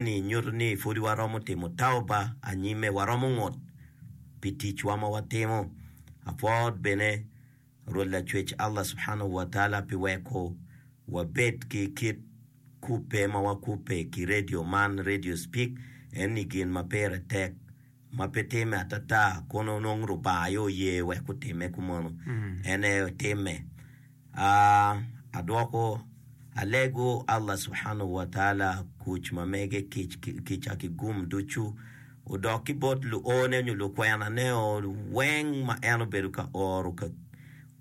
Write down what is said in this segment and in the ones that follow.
ni nyuto ni pud waromo timo tauba anyime, waromo ngut pi ticwa ma watimo. Apwor bene Rwot Lacwec Allah Subhanahu wa Taala pi weko wabed ki kit kubbe ma wakubbe ki redio man, Radio Speak, eni gin ma pire tek ma pe timme atata kun onongo Lubanga aye oye wek otimme kumeno, en aye otimme. Aa, adwoko, alego Allah subhanahu wa taala kuc ma mege kic ki kica ki gum ducu odok ki bot luone nyo lukwenaneo weng ma en obedo ka oro ka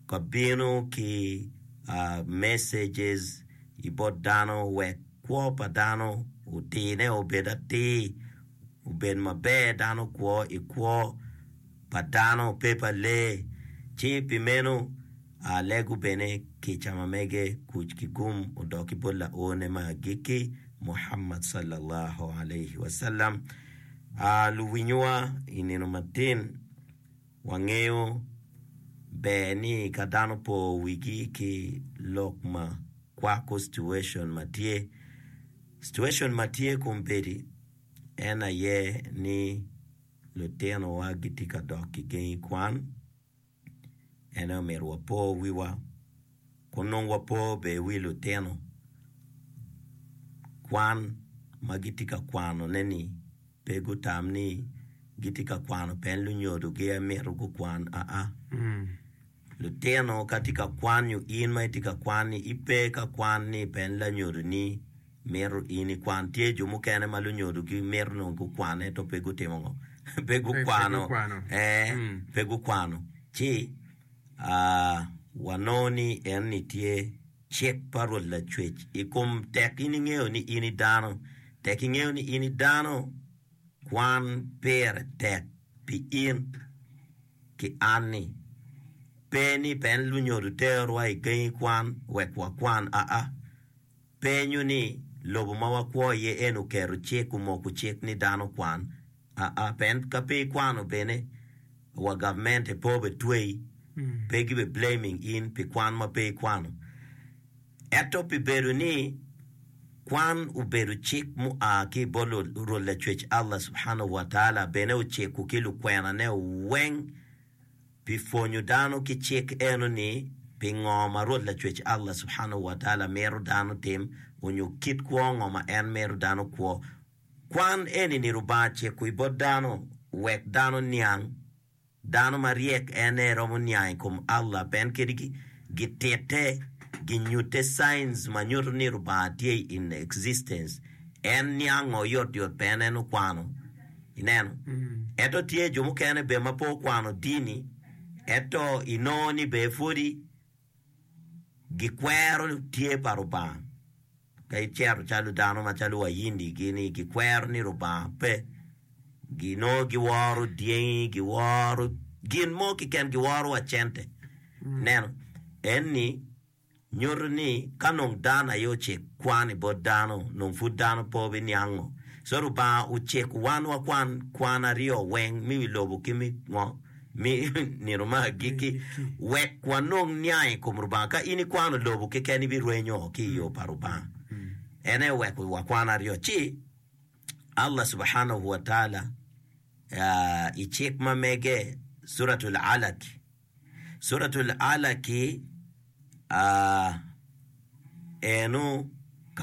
ka bino ki aa, messages i bot dano wek kwo pa dano otine obed atir. obed maber dano kwo i kwo pa dano pe pa lee, ci pi meno Lee gubene kica ma mege kuc ki gum odok ki bot Laone me agikki, Muhammad sallallahu alaihi wasallam. Luwinyowa i nino matin. Wangeyo ber ni ka dano po wigi ki lok ma kwako situation ma tye, situation ma tye kombeddi en aye ni lutinowa gitye ka dok ki gengi kwan, en aye omyero wapo wiwa ka onongo wapo bene wi lutino kwan ma gitye ka kwanone-ni. pe gutam ni gitye ka kwano pien lunyodo aye mito gukwan aa. Lutino ka tye ka kwan nyo in ma itye ka kwan-ni, ipe ka kwan ni pien lanyodoni mito in ikwan. Tye jo mukene ma lunyodogi mito nongo gukwan ento pe gutimo ngo? pe gukwano. Ee, pe gukwano. Ci, aa, wanongo ni enni tye. Cik pa Rwot Lacwec i kom tek in ingeyo ni in i dano, tek ingeyo ni in i dano, kwan pire tek pi in ki an-ni. Pe ni pen lunyodo terowa i gangi kwan wek wakwan aa. Penyo ni, Lobo ma wakwo iye eni oketo cik, omoko cik ni dano okwan? Aa, pien ka pe ikwano bene wa government e po be tweyi, pe gibe blaming in pi kwan ma pe ikwano. Eto pi bedo ni kwan obedo cik mu a ki i bot Rwot Lacwec Allah Subhanahu wa Taala bene ociko ki lukwena ne weng pi pwonyo dano ki cik eno ni pi ngo ma Rwot Lacwec Allah Subhanahu wa Taala mito dano tim onyo kit kwo ngo ma en mito dano kwo Kwan eni ni Rubanga ciko i bot dano wek dano niang, dano ma ryek en aye romo niang i kom Allah pien kadi gitite ginyute science ma nyuto ni Rubanga tye in existence en niango yot yot pien en okwano ineno ento tye jo mukene bene ma pe okwano dini ento inongo ni bene pwodi gikwero tye pa Lubanga. Ka icito calo dano macalo Wahindi gini gikwero ni Lubanga pe, ginongo giworo dyengi, giworo gin mo keken, giworo wa cente. Ineno? Eni nyuto ni ka nong dano aye ocik kwan i bot dano, nong pud dano pe obiniang ngo. So Lubanga ociko wan wakwan kwan aryo weng, me wi lobo ki me ngo. mi nino ma agikki, wek wanong niang i kom Lubanga. Ka in ikwano lobo keken, ibirwenyo ki i yo pa Lubanga. En aye oweko wakwan aryo. Ci Allah subhanahu wa taala ah, i cik ma mege, Suratul Alaq, Suratul Alaq ah, eno